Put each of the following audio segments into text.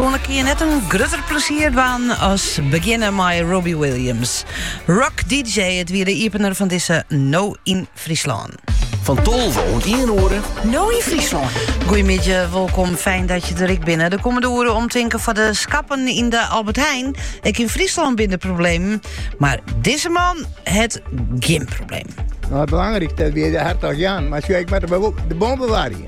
Persoanlik kin je net in grutter plesier dwaan as begjinne mei Robbie Williams. Rock DJ, it wie de iepener fan dizze No yn Fryslân. Fan 12 oant 1 oere. No yn Fryslân. Goeiemidje, wolkom, fijn dat je der ek binne. De kommende oere omtinken foar de skappen in de Albert Heijn. Ek yn Fryslân binne der problemen, mar dizze man hat gjin probleem. Nou, belangrijk dat weer de Hertog Jan, maar zo ik met de, de bombewaring.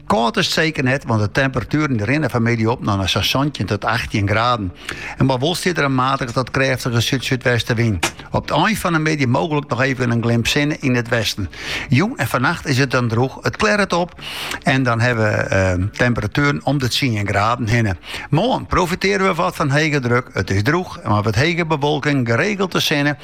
Kâld is it seker net, want de temperatueren rinne fanmiddei op nei sa'n santjin tot achttjin graden. En dêrby wol stiet der in matige tot krêftige súd-súdwestewyn. Op it ein fan de middei mooglik noch efkes in glimp sinne yn it westen. Jûn en fannacht is it dan drûch, it klearret op en dan hawwe we ehm, temperatueren om de tsien graden hinne. Moarn profitearje we wat fan hege druk. It is drûch, mar wat hege bewolking, geregeld de sinne.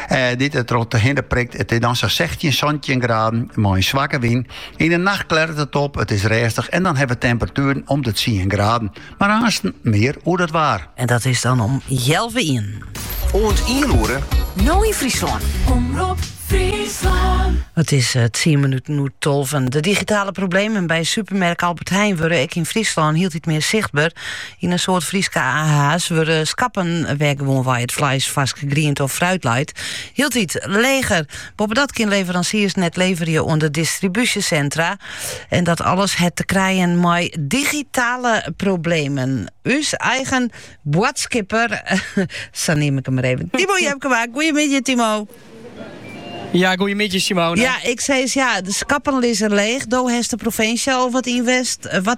Eh, dy't der trochhinne prikt. It is dan sa'n sechstjin, santjin graden mei in swakke wyn. Yn de nacht klearret it op, it is rêstich en dan hawwe we temperatueren om de tsien graden. Mar aansten mear oer dat waar. En dat is dan om healwei ien. Oant ien oere. No yn Fryslân. Omrop Fryslân. It is eh, tsien minuten oer tolven. De digitale problemen by supermerk Albert Heijn wurde ek yn Fryslân hieltyd mear sichtber. Yn in soad Fryske AH's wurde skappen wêr't gewoanwei it fleis, farske griente of fruit leit hieltyd leger. Boppedat kin leveransiers net leverje oan de distribúsjesentra. En dat alles het te krijen mei digitale problemen. Us eigen boadskipper, sa neam ik hem maar even, Timo Jepkema. Goedemiddag, Timo. Ja, goedemiddag Simone. Ja, ik zei eens, ja, de schappen liggen leeg. Do heeft de provincie al wat invest. Wat,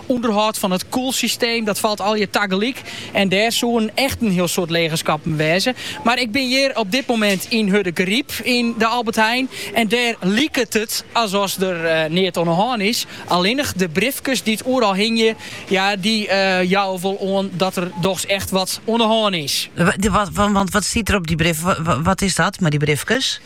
Underhâld fan it koelsysteem, dat falt allegear tagelyk. En dêr soenen echt in hiel soad lege skappen wêze. Mar ik bin hjir op dit momint yn Hurdegaryp yn de Albert Heijn. En dêr liket it as oft der neat oan 'e hân is. Allinnich de briefkes dy't oeral hingje, ja, dy jouwe wol oan dat der dochs echt wat oan 'e hân is. Want wat stiet der op dy briefkes? Wat is dat mei dy briefkes?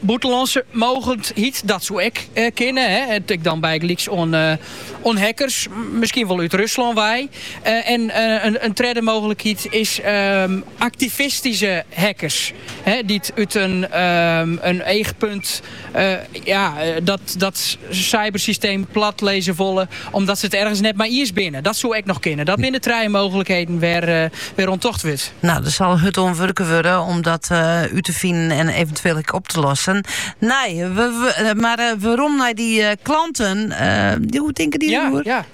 Bûtenlânske mogendheid, dat soe ek kinne. Tink dan bygelyks oan hackers, miskien wol út Ruslân wei. En in tredde mooglikheid is aktivistyske hackers, dy't út in eachpunt dat cybersysteem platlizze wolle. Omdat se it ergens net mei iens binne. Dat soe ek noch kinne. Dat binne trije mooglikheden wêr't oan tocht wurdt. No, der sil hurd oan wurke wurde om dat eh, út te finen en eventueel ek op te lossen. Nee, we, eh, mar eh, werom nei dy klanten. Uh, hoe tinke dy ja, Ja.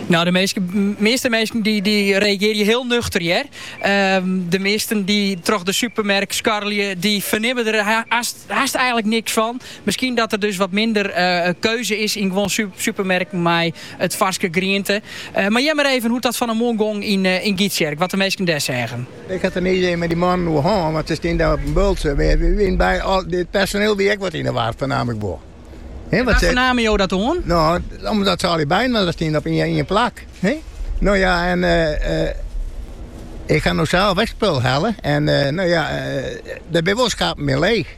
No, de measte, measte minsken dy, dy reagearje hiel nuchter, hear. Ehm, de measten dy't troch de supermerk skarrelje, dy fernimme der hast, hast eigenlik niks fan. Miskien dat der dus wat minder keuze is yn guon supermerken mei de farske griente. Mar hear mar even hoe't dat fan 'e moarn gong yn Gytsjerk, wat de minsken dêr seagen. Ik hat der nea ier mei dy mannen oer hân, mar se steane op in bultsje. It personeel wie ek wat yn 'e war, foar myn begryp. Wêr fernamen jo dat oan? No, omdat se allegear byinoar steane op ien plak. No ja, en ik ha no sels ek spul helle en no ja, der binne wol skappen mear leech.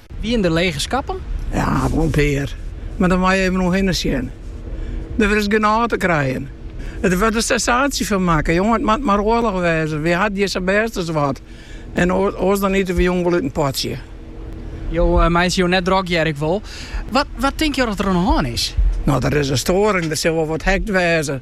Wienen der lege skappen? Ja, wol in pear. Mar dan moat je even om je hinne sjen. Der is genôch te krijen. Der wurdt in sensaasje fan makke. Jonge, it moat mar oarloch wêze. Wy ha it hjir sa bêst as wat. En oars dan ite we jûn wol út in potsje. Jo meitsje jo net drok, hear ik wol. Wat tink jo dat der oan de hân is? No, der is in stoaring. Der sil wol wat hackt wêze.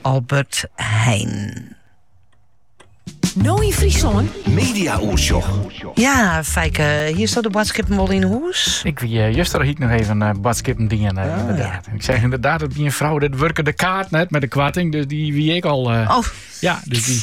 Albert Heijn. No in Friesland. Media Oersjoch. Ja, Fijke, hier staat de badskippen wel in hoes. Ik wie eh, juster hiek nog even uh, eh, badskippen dingen, eh, ah, inderdaad. Ik zeg inderdaad dat die een vrouw, dat werken de kaart net met de kwarting, dus die wie ik al. oh. Ja, dus die...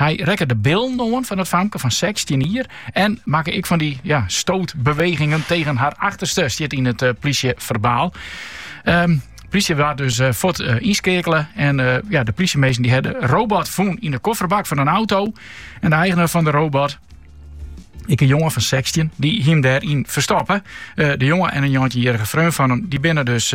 Hy rekke de billen oan fan it famke fan sechstjin jier en makke ek fan dy ja, stootbewegingen tegen har achterste, stiet yn it plysjeferbaal. Um, plysje waard dus eh, fuort eh, ynskeakele. En eh, ja, de plysjeminsken dy ha de robot fûn yn de kofferbak fan in auto. En de eigenaar fan de robot, ek in jonge fan 16 dy't him dêryn ferstoppe. De jonge en in njoggentjinjierrige freon fan him, dy binne dus